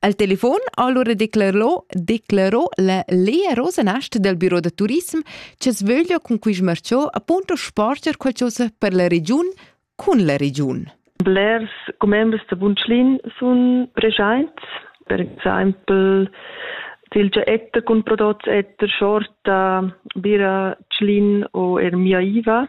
Al telefon allora declarò, declarò la Lea Rosenast del Büro da Turism che sveglia con cui smarciò appunto sporger qualcosa per la regiun cun la regiun. Blers commembers da Bunschlin sun preschaints, per exempel Silgia Etter con prodots Etter, Shorta, Bira, Tschlin o er Mia Iva.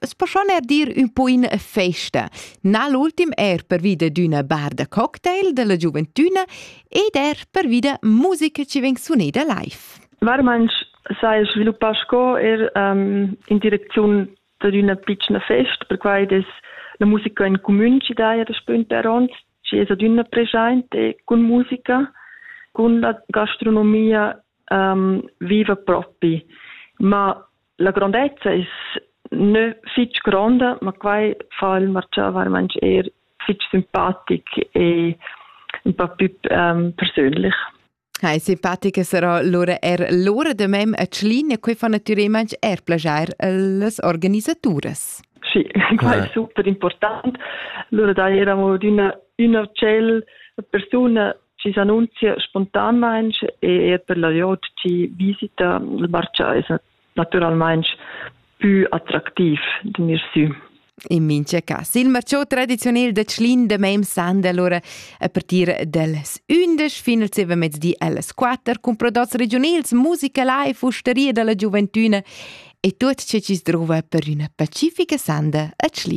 Es po schon er dir ün po in festa. Na l'ultim er pervida d'üna bar da cocktail della giuventüna ed er pervida musica ci veng suneda live. Varmanch sai sviluppà sco er um, in direcziun da una piccina festa, perquai es la musica in comün ci daia da spünt per ons, ci es ad una presente con musica, con la gastronomia um, viva propi. Ma La grondezza es nö fich gronda, ma quai fa il marchà vairamaing eir fich simpatic e ün pa pü ähm, persönlich. Hai simpatica sarà lura er l'ora da mem a Tschlin e quai fa natüralmaing er plaschair a las organisaturas. Sì, quai è super important. Lura dai eravamo d'üna üna uccello, persuna chi s'annunzia spontanmaing e eir per la gliout chi visita il marchà es natüralmaing pü attractiv d'gnir sü. In mincha cas. Il marciò tradiziunel da Tschlin da meim sanda allora a partir dals 11 fin al mezdi allas 4 cun prodots regiunals, musica live, usteria dalla gioventüna e tuot ce chi's druva per üna pacifica sanda a Tschlin.